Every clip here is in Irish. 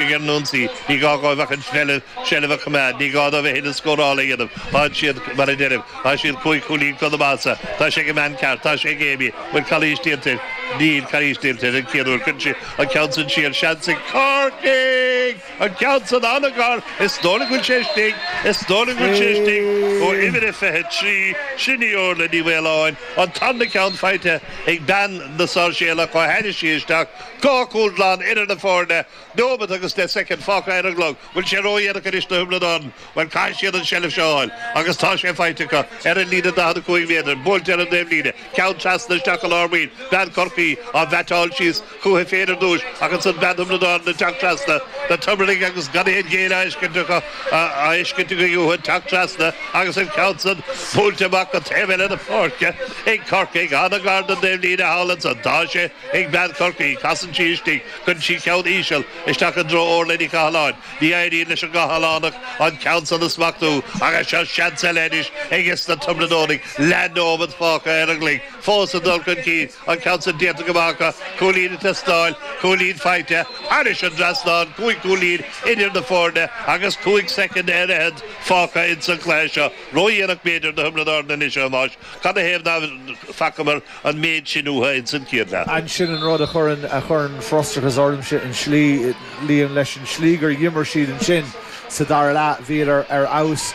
ag an ionsaí. Ní gá dhóibh ach an seilbh a choimeád. Ní gá dóibh a thuilleadh scórála a dhéanamh. Táid siad, mar a deirim, tá siad cúig chúilín chun na maitheasa. Tá sé ag an mbean ceart. Tá sé ag Amy. Bhfuil calaois déanta air? Níl calaois déanta air. An chéad uair. Cuireann sí an ceann san siar. Seans ag Corcaigh! An ceann san an-ghar. Is dóigh liom go bhfuil sé istigh. Is dóigh liom go bhfuil sé istigh ó uimhir a fiche trí. Sin í Orla Ní Mhaoláin. An tarna ceann faighte ag bean na Sáirséalach. Ó tháinig sí isteach. Dhá chúl glan idir na foirne, nóimeat agus deich soicind fágtha ar an gclog. Bhfuil sé ródhéanach anois do Thiobraid Árann? Bhuel, caithfidh siad an tseilbh seo a fháil agus tá sé faighte acu. Ar an líne 45 méadar, buailte ar an dtaobhlíne, ceann trasna isteach go lár maoin bhean Chorcaí, á bhaiteáil síos chuici féin ar dtús ach ansan bean Thiobraid Árann ag teacht trasna, na Tiobradaigh agus gan aon ghéilleadh á fheiscint acu, á fheiscint againn uathu ag teacht trasna agus an ceann san buailte amach go taobh eile na páirce ag Corcaigh. Ana-ghar don dtaobhlíne thall ansan. Tá sé. ag bean Chorcaí. Casann sí istigh. Cuireann sí ceann íseal isteach i dtreo Orla Ní Chathaláin. Ní éiríonn leis an gCathalánach an ceann san a smachtú. Ach seo seans eile anois ages na Tiobraid Árannaigh leath nóimead fágtha ar an gclog. Fós ag dul chun cinn. An ceann san déanta go maith acu. Cúilín ag teastáil. Cúilín faighte. Thairis an dtrasnán. Cúig chúilín idir na foirne agus cúig soicind ar fhichead fágtha insan cluiche seo. Ró-dhéanach b'fhéidir do Thiobraid Árann anois a Thomáis. Canathaobh ná facamar an méid sin uatha ins an chéad leath? An sin an rud a chuireann, a chuireann frustrachas ormsa, an slí, líon leis an slí gur dh'imir siad ansin sa dara leath, bhíodar ar fheabhas,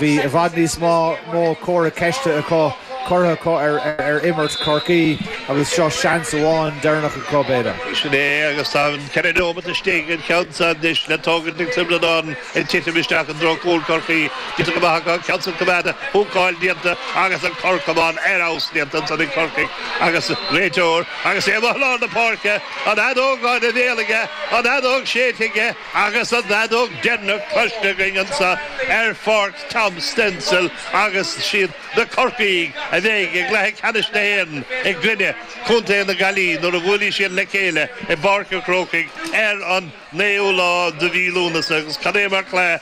bhí i bhfad níos má, mó comhartha ceiste acu, curtha acu ar, ar imirt Chorcaí agus seo seans amháin deireanach acu, b'fhéidir. Sin é é agus tá ceithre neomat istigh, an ceann san anois le tógaint ag Tiobraid Árann. Ag titim isteach i dtreo chúl Chorcaí, bhí sé go maith acu an ceann san a choimeád, húcáil déanta agus an cor camáin ar fheabhas déanta ansan ag Corcaigh agus an réiteoir agus é amuigh i lár na páirce, an fheadóg ina bhéal aige, an fheadóg séidte aige agus an fheadóg deireanach cloiste againn anso ar Pháirc Tom Semple agus siad na Corcaígh a bheidh i gCluiche Ceannais na hÉireann i gcoinne Chontae na Gaillimhe nuair a bhuailfidh siad le chéile i bPáirc an Chrócaigh ar an naoú lá de mhí Lúnasa, agus cad é mar chluiche,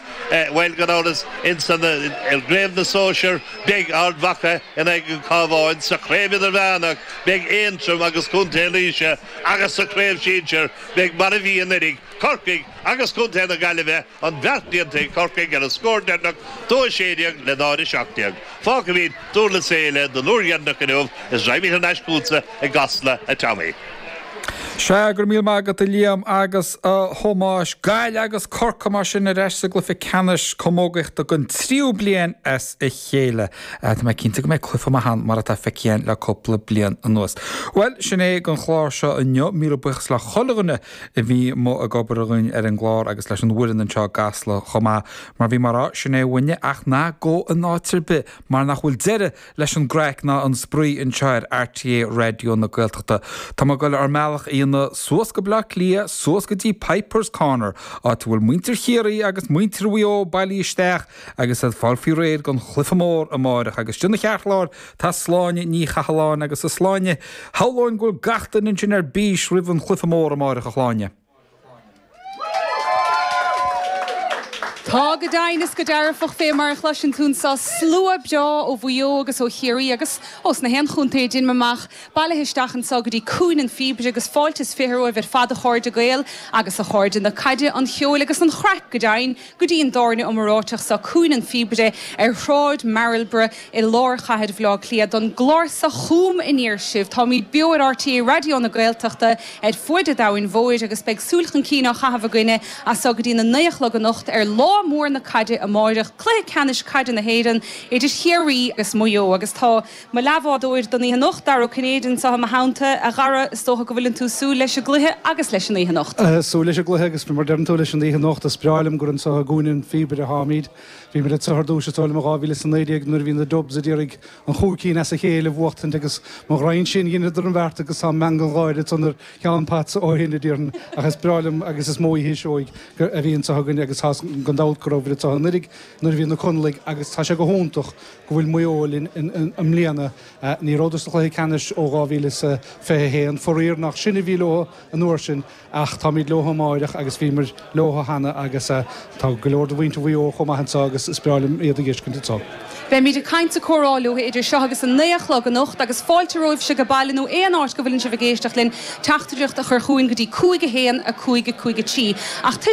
bhuel, gan amhras, ins an, eh, gCraobh na Sóisear, beidh Ard Mhacha in aghaidh an Chabháin, sa Chraobh Idirmheánach, beidh Aontroim agus Contae Laoise, agus sa Chraobh Shinsir, beidh, mar a bhí anuiridh, Corcaigh agus Contae na Gaillimhe, an bheart déanta ag Corcaigh ar an scór deireanach, dó a sé déag le náid a seacht déag. Fágfaimíd Durlas Éile don uair dheireanach inniu is raghaimíd thar n-ais chútsa i gCasla, a Tommy. Sea, go raibh míle maith agat a Liam agus a Thomáis. Gaillimh agus Corcaigh mar sin ar ais sa gcluiche ceannais camógaíochta don tríú bliain as a chéile. Tá mé cinnte go mbeidh cluiche maith ann mar atá feicthe againn le cúpla bliain anuas. Bhuel, sin é an clár seo inniu. Míle buíochas le chuile dhuine a bhí amuigh ag obair againn ar an gclár agus leis an bhfoireann anseo i gCasla chomh maith. Mar bhí mé a rá, sin é uainne, ach ná gabh in áit ar bith mar nach bhfuil deireadh leis an gcraic ná an spraoi anseo ar RTÉ Raidió na Gaeltachta. Tá muid ag dul ár mbealach a dhéanamh suas go Bleá Cliath, suas go dtí Pipers Corner, áit a bhfuil muintir Chiarraí agus muintir Mhaigh Eo bailithe isteach agus iad ag fáil faoi réir don chluiche mór amáireach agus istigh ina cheartlár tá Sláine Ní Chathalláin agus a Shláine, shamhlóinn go bhfuil gach duine ansin ar bís roimh an chluiche mór amáireach a Shláine. Tá go deimhin is go dearfach, fé mar a chloiseann tú anso, slua breá ó Mhaigh Eo agus ó Chiarraí agus ós nach aon chontae a deinim amach, bailithe isteach anso go dtí Cúinne an Phíobaire agus fáilte is fiche romhaibh ar fad a chairde Gael agus a chairde na caide, an cheoil agus an chraic, go deimhin. go dtí an dtábhairne iomráiteach so, Cúinne an Phíobaire, ar Shráid Marlborough i lár chathair Bhaile Átha Cliath, don gclár so Chugam Aniar Sibh. Táimíd beo ar RTÉ Raidió na Gaeltachta ar fuaid a' domhain mhóir agus beidh súil chun cinn á chaitheamh againne as so go dtí na naoi a chlog anocht ar lá mór na caide amáireach, cluiche ceannais caide na hÉireann idir Chiarraí agus Maigh Eo agus tá. Mo leathbhádóir don oíche anocht, Dara Ó Cinnéide anseo i mo theannta. A Dhara, is dócha go bhfuileann tú ag súil leis an gcluiche agus leis an oíche anocht? Súil leis an gcluiche agus mar deireann tú leis an oíche anocht, is breá liom gur anseo i gCúinne an Phíobaire atáimíd. Bhíomar anseo ar dtúis is dóigh liom i 2019 nuair a bhí na Dubs ag iarraidh an chúig cinn as a chéile a bhuachtaint agus mo ghraidhin sin, dheineadar an bheart agus tá an meangadh gáire san ar Sheán Potts ó shin, a déarfainn. Ach is breá liom agus is mó oíche seoigh a bhí anseo againne agus tá's agam gan dabht go rabhamar anseo anuiridh nuair a bhí na Conallaigh agus tá sé go hiontach go bhfuil Maigh Eo linn i mbliana. Ní rabhadar sa chluiche ceannais ó 2021, faraor. Nach sinn a bhí leo an uair sin ach táimid leo amáireach agus bhíomar leo cheana agus tá go leor de mhuintir Mhaigh Eo chomh maith anseo agus is breá liom iad a fheiscint anseo. Beimid ag caint 's ag comhrá leo idir seo agus a naoi a chlog anocht agus fáilte romhaibhse ag baile nó aon áit go bhfuileann sibh ag éisteacht linn teachtaireacht a chur chugainn go dtí 51553. Ach toisc